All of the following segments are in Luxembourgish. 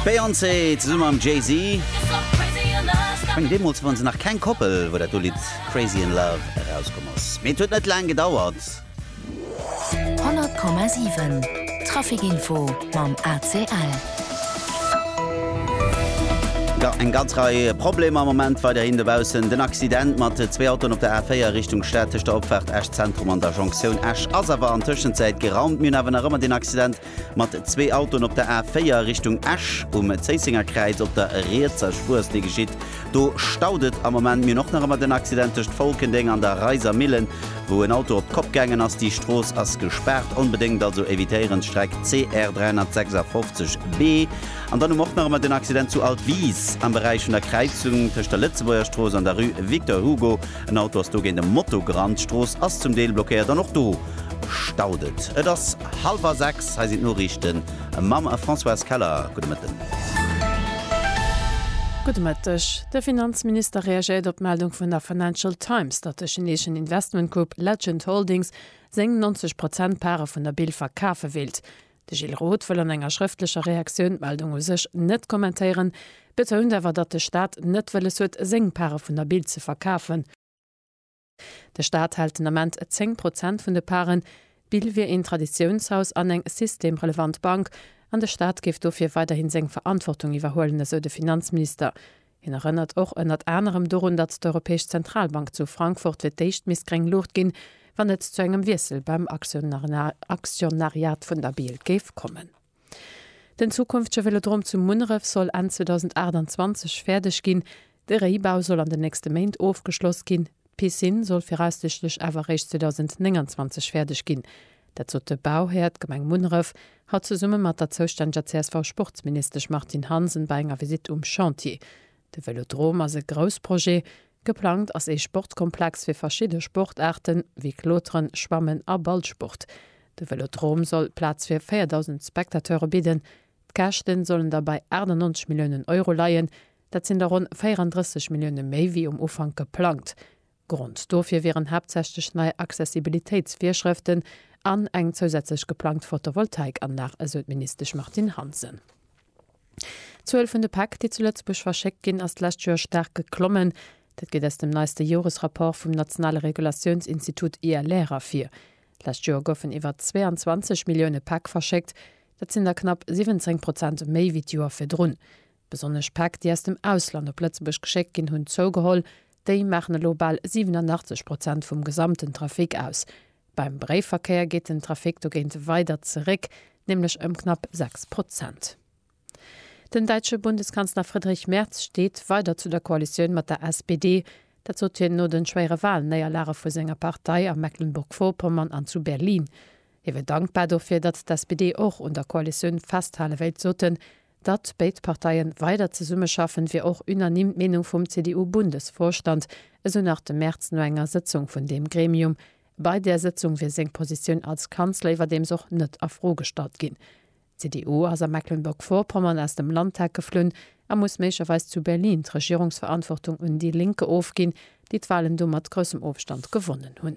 D'Beyoncé zesumme mam Jay-Z schonn deemools ware se nach keng Koppel, wou dat do Lidd Crazy in Love erauskomm ass. Mee et huet net laang gedauert. 100,7 Trafic Info mam ACL. Jo, eng ganz Rei Problemer am Moment weiderhin dobaussen. Den Accident mat zwee Autoen op der A4 Richtung Stad tëscht der Opfaart Esch Zentrum an der Jonktioun Esch ass awer an Tëschenzäit geraumt. Mir hunn awer nach ëmmer den Accident mat zwee Autoen op der A4 Richtung Esch um Zéisséngerkräiz op der rietser Spuerslinn geschitt. Do staut et am Moment. Mir hunn och nach ëmmer den Accident tëscht Folkendeng an der Reisermillen, wou en Auto op d'Kopp gaangen ass. Déi Strooss ass gespaart. Onbedéngt also evitéieren d'Streck CR 356 B. An dann hu mer och nach ëmmer den Accident zu Altwis am Beräich vun der Kräizung tëscht der Lëtzebuergerstrooss an der Rue Victor Hugo. En Auto ass dogéint e Motogrand. D'Strooss ass zum Deel blockéiert an och do staut et. Et ass hallwer 6, hei sinn d'Noriichte mam Françoise Keller. Gudde Mëtten. Gudde Mëtteg. De Finanzminister reagéiert op d'Meldung vun der Financial Times, datt de chineeschen Investmentgrupp Legend Holdings seng 90 Prozent Pare vun der Bill verkafe wéilt. De Gilles Roth wëll an enger schrëftlecher Reaktioun d'Meldung u sech net kommentéieren, betount awer, datt de Staat net wëlles huet, seng Pare vun der Bild ze verkafen. De Staat hält den Ament 10 Prozent vun de Paren. D'Bild wier een Traditiounshaus an eng systemrelevant Bank an de Staat géif dofir weiderhi seng Verantwortung iwwerhuelen, esou de Finanzminister. Hien erënnert och ënnert anerem dorun, datt d'Europäesch Zentralbank zu Frankfurt fir d'éischt misst gréng Luucht ginn, wann et zu engem Wiessel beim Aktionariat vun der Bild géif kommen. Den zukünftege Vélodrom zu Munneref soll Enn 2028 fäerdeg ginn. De Réibau soll an den nächste Méint ofgeschloss ginn. D'Piscine soll viraussichtlech awer eréischt 2029 fäerdeg ginn. Dat sot de Bauhär, d'Gemeng Munneref, haut zesumme mat der zoustänneger CSV-Sportsministesch Martine Hansen bei enger Visitt um Chantier. De Vëlodrom ass e grouss Projet. Geplangt ass ee Sportskomplex fir verschidde Sportaarten, wéi Kloteren, Schwammen a Ballsport. De Vëlodrom soll Plaz fir 4.000 Spectateure bidden. D'Käschte sollen da bei 98 Milliounen Euro leien. Dat sinn der ronn 34 Millioune méi wéi um Ufank geplangt. Grond dofir wieren haaptsächlech nei Accessibilitéitsvirschrëften an eng zousätzlech geplangt Photovoltaikanlag, esou d'Ministesch Martine Hansen. D'Zuel vun de Päck, déi zu Lëtzebuerg verschéckt ginn, ass d'lescht Joer staark geklommen. Dat geet aus dem neiste Joresrapport vum nationale Regulatiounsinstitut ILR ervir. D'lescht Joer goufen iwwer 22 Millioune Päck verschéckt. Dat sinn der knapp 17 Prozent méi wéi d'Joer virdrun. Besonnesch Päck, déi aus dem Ausland op Lëtzebuerg geschéckt ginn, hunn zougeholl. Déi maachen elo bal 87 Prozent vum gesamten Trafic aus. Beim Bréifverkéier geet den Trafic dogéint weider zeréck, nämlech ëm knapp 6 Prozent. Den däitsche Bundeskanzler Friedrich Merz steet weider zu der Koalitioun mat der SPD. Dat sot hien no de schwéiere Walnéierlage vu senger Partei a Mecklenburg-Vorpommern an zu Berlin. Hie wier dankbar dofir, datt d'SPD och un der Koalitioun festhale wéilt, sot en, Datt béid Parteie weider zesummeschaffen, wier och unanime d'Meenung vum CDU-Bundesvorstand, esou nach de Merz no enger Sëtzung vun deem Gremium. Bei där Sëtzung wier seng Positioun als Kanzler iwwerdeems och net a Fro gestallt ginn. D'CDU ass a Mecklenburg-Vorpommern aus dem Landtag geflunn a muss méiglecherweis zu Berlin d'Regierungsverantwortung un déi Lénke ofginn, déi d'Walen do mat groussem Ofstand gewonnen hunn.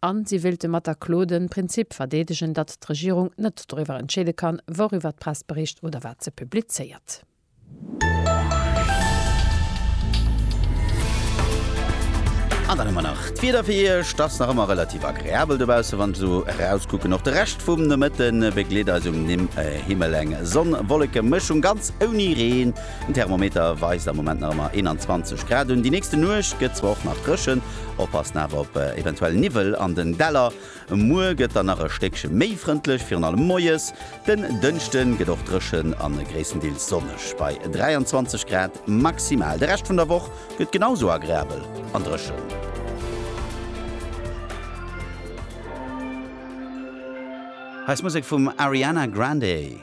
A si wéilte mat der Klo de Prinzip verdeedegen, datt d'Regierung net doriwwer entscheede kann, wouriwwer d'Press bericht oder wat se publizéiert. An dann hu mer nach d'Wieder fir Iech. Et ass nach ëmmer relativ agreabel dobausse wann ech esou erauskucken. Och de Rescht vum Nomëtte begleet eis um Himmel eng Sonn-Wolleke-Mëschung, ganz ouni Reen. Den Thermometer weist am Moment nach ëmmer 21 Grad un. Déi nächste Nuecht gëtt zwar och nach dréchen, Oppassen awer op eventuell Niwwel an den Däller. Muer gëtt dann nach e Stéckche méi frëndlech, virun allem moies. Den Dënschde gëtt och dréchen a gréisstendeels sonneg bei 23 Grad maximal. De Rescht vun der Woch gëtt genau esou agreabel an dréchen. Hei ass Musek vum Ariana Grande.